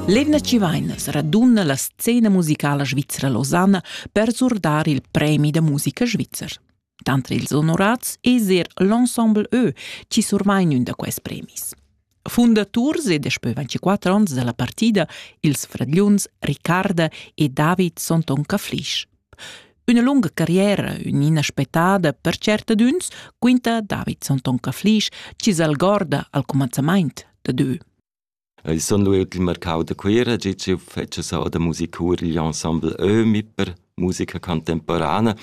L'Edna Civainas raduna la scena musicala svizra Losanna per surdar il premi da musica svizzer. Tanter ils onorats es er l'ensemble Ö chi survain ün da quels premis. Fundaturs e daspö 24 ons da la partida ils fradgliuns Ricarda e David son Ton Caflisch. Üna lunga carriera, ün'ina spettada per tschertadüns, quinta Davidson Tonka Flisch chi s'algorda al cumanzamaint da dö. Ich son lu il marcau da Cuira, gi ci fece sau da musicur gli ensemble Ömi per musica contemporana.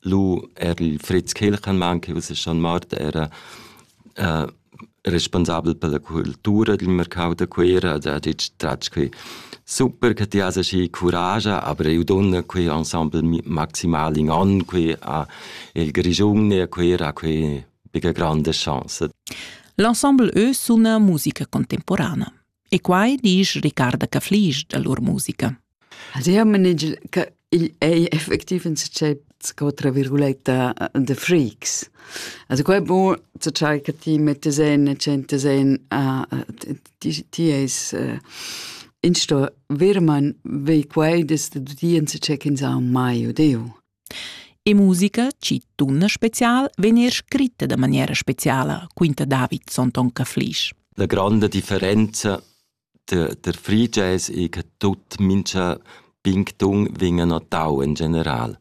Lu er il Fritz Kilchenmann, che usa schon mort, era uh, responsabel per la cultura dil marcau da Cuera ed ha detg tratg quei super che ti has aschi curascha, aber eu donna quei ensemble maximal in an quei a il Grischun e a Cuera quei bega grande chance. L'ensemble eu suna musica contemporana. E quai disch Ricarda Caflisch da lur musica. Also io manegel che il ei effektiv in se sco tra virguletta the freaks. Also qua è buon zu ciai che ti mette sen e cente sen a ti ti es in sto virman vei quai des de dien se check in sa mai odeu. E musica, ci tunna special, vegn er scritta da maniera speciala, quinta David Sonton Caflisch. La grande differenza der, der Free Jazz è che tutti mincha pingtung vengono notau in general.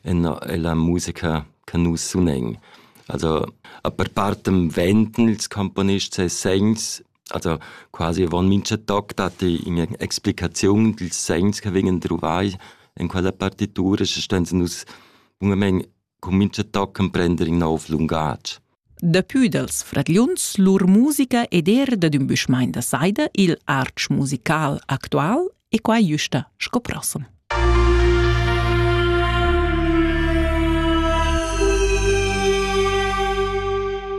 È la musica che nus sunen. Also, a per partem venten ils componist ses segns also quasi avon mincha toc datti üna explicaziun dils segns che vegnan druvai in quella partitura, sche ston nus bunamain cun mincha toc emprender in nov lungatg. Dapü dals fragliuns lur musica ed er dad ün büschmain da saida, il artsch musical actual, e quai güsta sco prossem.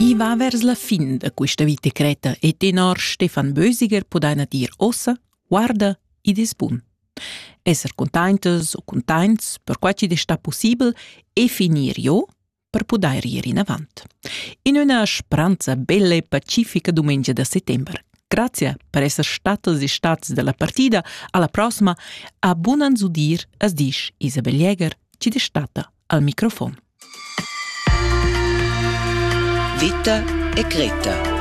I va vers la fin da questa vita creta e tenor Stefan Bösiger pudaina dir ossa, guarda ed es bun. Esser containtas o containts, per quai chi'd es sta pussibel, e finir jo, per pudair ir inavant. In üna spranza bella e pacifica dumengia da settember. Grazie per esser statas e stats dalla partida alla prossima a bunan zudir as disch Isabel Jäger, ci destata al microfon. Vita e Greta